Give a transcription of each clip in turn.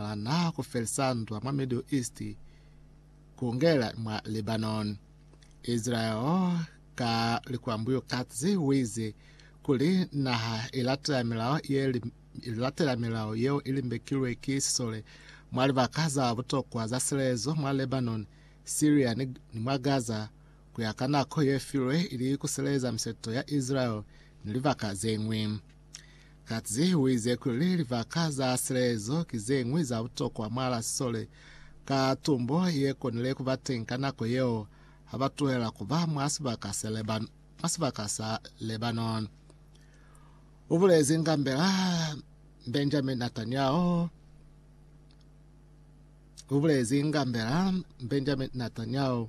Ba naha ku felisa ndwa mwa Middle East, ku ngela mwa Lebanon. Israel ka likwambuyo katsi uize kuli naha i latela milao ye i latela milao yeo i limbekilwe ki sisole mwa libaka za butokwa za silelezo mwa Lebanon, Syria ni ni mwa Gaza ku ya ka nako ye filwe ili ku seleza miseto ya Israel ni libaka ze ñwi. Katzi u ize kuli libaka za silezo ki ze ñwi za butokwa mwa la sisole ka tumbo ye konile ku ba teñi ka nako yeo ha ba tuhela ku ba mwa sibaka se Lebanon, mwa sibaka sa Lebanon. U bulezi ngambela Benjamin Netanyahu u bulezi ngambela Benjamin Netanyahu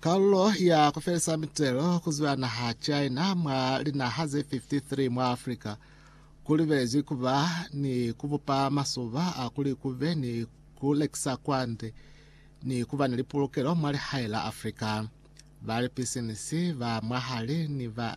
Kalulo ya ku felisa mitelo ku zwa naha China mwa linaha ze 53 mwa Afrika ku libelezwi ku ba ni ku bupa masuba a kuli ku be ni ku lekisa kwande ni ku ba ni lipulukelo mwa lihae la Afrika. Ba lipisinisi ba mwahali ni ba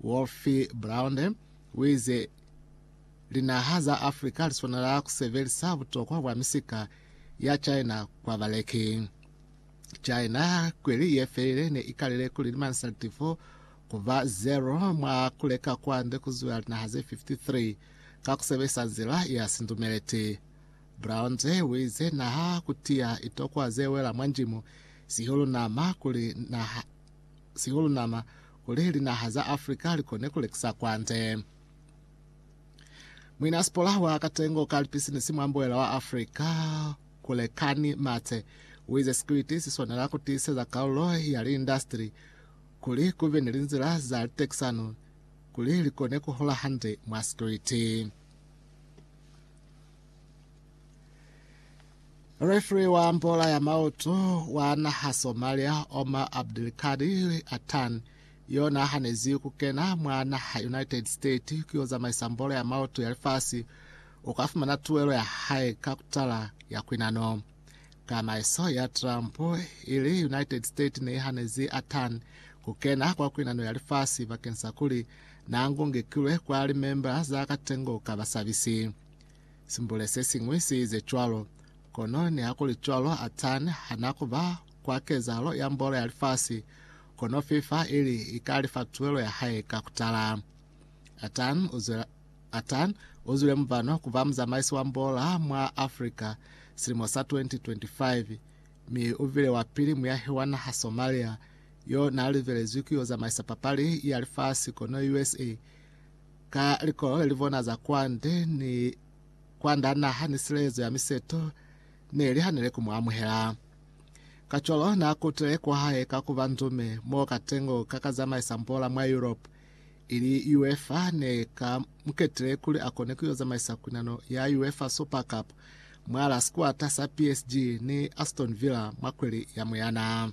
Wolfie Brownde uize, Linaha za Africa liswanela kusebelisa butokwa bwa misika ya China kwa baleki. China kweli yefelile ne ikalile kuli limansa litifo kuba zero mwa kuleka kwande kuzwela linaha ze 53 ka kusebelisa nzila ya sindumeleti. Brownde uize, Naha kutiya itokwa zewela mwa njimu, sihulu nama, kuli naha sihulu nama kuli linaha za Africa likone kulekisa kwande. Muinaspola wa katengo ka lipisinisi mwa mbuela wa Africa, Kulekani Mathe, uize sikwiti siswanela kutiiseza kalulo ya liindastri kuli kube ni linzila za litekisano kuli likone kuhola hande mwa sikwiti. Refri wa mbola ya maoto wa naha Somalia Omar Abdulkadir Atan yo nahanezi ku kena mwa naha United States ku yo zamaisa mbola ya maoto ya lifasi u ka fumana tuelo ya hae ka kutala ya kwinano. Kamaiso ya Trump ili United States ne ihanezi Atan ku kena kwa kwinano ya lifasi bakeng sa kuli na ngungekilwe kwa limemba za katengo ka basabisi. Simbule se siñwi si ize cwalo. Kono nihakuli cwalo, Atan ha n'a ku ba kwa kezahalo ya mbolo ya lifasi, kono FIFA i li i ka lifa tuelo ya hae ka ku tala. Atan u zwela, Atan u zwile mubano ku ba muzamaisi wa mbola mwa Afrika silimo sa 2025, mi u bile wa pili muyahi wa naha Somalia yo n'a livelezwi ku yo zamaisa papali ya lifasi, kono USA Ka likolole li bona za kwande ni kwanda naha ni silezo ya miseto ne li hanile ku mu amuhela. Kacwalo n'a kutile kwahae ka ku ba ndume mo katengo ka ka zamaisa mbola mwa Yurope, ili UEFA ne ka mu ketile kuli a kone ku yo zamaisa kunano ya UEFA Super Cup mwa la sikwata sa PSG ni Aston Villa mwa kweli ya Muyana.